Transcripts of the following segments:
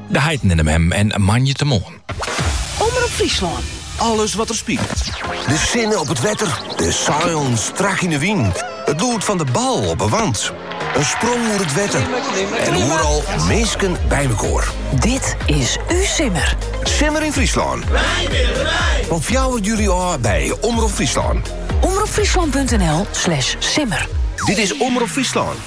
De heiten in hem en moandeitemoarn. Omrop Fryslân. Alles wat der spilet. De sinne op it wetter. De seilen strak yn de wyn. It lûd fan de bal op 'e want. In sprong oer it wetter. En al minsken by mekoar. Dit is ús simmer. Simmer yn Fryslân. Wy binne derby. Fan 4 july ôf by Omrop Fryslân. Omropfryslan.nl slash simmer. Dit is Omrop Fryslân.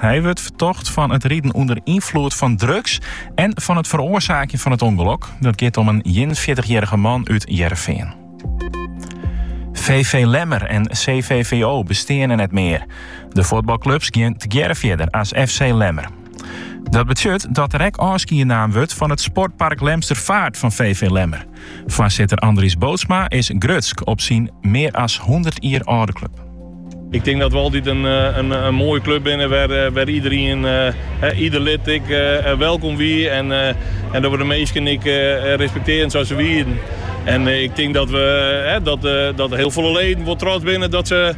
Hy wurdt fertocht fan it riden ûnder ynfloed fan drugs en fan it feroarsaakjen fan it ûngelok. Dat giet om in ienenfjirtichjierrige man út It Hearrenfean. VV Lemmer en CVVO besteane net mear. De fuotbalklups gean tegearre fierder as FC Lemmer. Dat betsjut dat der ek ôfskied naam wurdt fan it sportpark Lemster Feart fan VV Lemmer. Foarsitter Andries Bootsma is grutsk op syn mear as hûndert jier âlde klup. Ik tink dat we altyd in moaie klup wienen wêr't iederien, ieder lid ek, welkom wie en dat we de minsken ek respektearjen sa't se wienen. En ik tink dat hiel folle leden wol trots binne dat se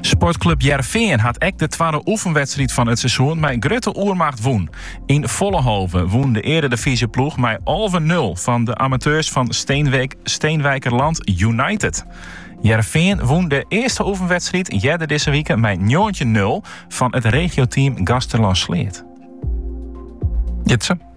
Sportklup Hearrenfean hat ek de twadde oefenwedstriid fan it seizoen mei grutte oermacht wûn. Yn Follehove wûn de earedivyzjeploech mei alve nul fan de amateurs fan Steenwijkerland United. Hearrenfean wûn de earste oefenwedstriid earder dizze wike mei njoggentjin nul fan it regioteam Gaasterlân-Sleat. Jitse.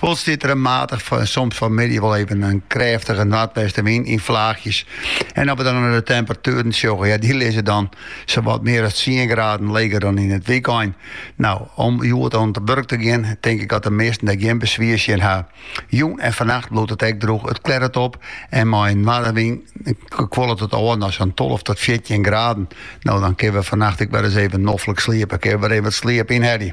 Wol stiet der in matige en soms fan 'e middei wol even in krêftige noardwestewyn yn fleachjes. En as we dan nei de temperatueren sjogge, ja dy lizze dan sawat mear as tsien graden leger dan yn it wykein. No, om hjoed oan it wurk te gean, tink ik dat de measten dêr gjin beswier tsjin ha. Jûn en fannacht bliuwt it ek droech, it klerret op en mei in noardewyn kuollet it ôf nei sa'n tolve tot fjirtjin graden. No, dan kinne we fannacht ek wer ris even noflik sliepe, kinne we wer even wat sliep ynhelje.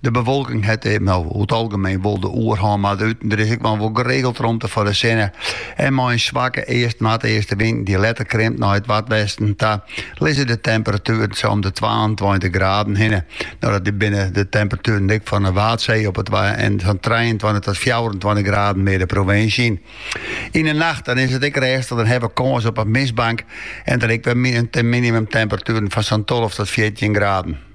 De bewolking hat eh, no, oer it algemeen wol de oerhân, mar der út en troch is ek noch wol geregeld romte foar de sinne. En mei in swakke east-noardeastewind dy't letter krimt nei it noardwesten ta, lizze de temperatueren sa om de twaentweintich graden hinne. No, dat binne de temperatueren ek fan de Waadsee op it Waad en sa'n trijeentweintich tot fjouwerentweintich graden mear de provinsje yn. Yn de nacht dan is it ek rêstich, dan hawwe we kâns op in mistbank en dan ek wer minimumtemperatueren fan sa'n tolve tot fjirtjin graden.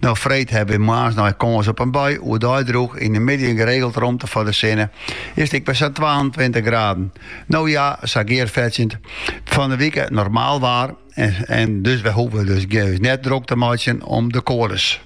No freed hawwe wy moarns noch kâns op in bui, oerdei droech, yn de middei geregeld romte foar de sinne. Is it ek wer sa'n twaentweintich graden? No ja, sa gear fetsjend. Fan de wike normaal waar en dus wy hoege dus ús net drok te meitsjen om de koades.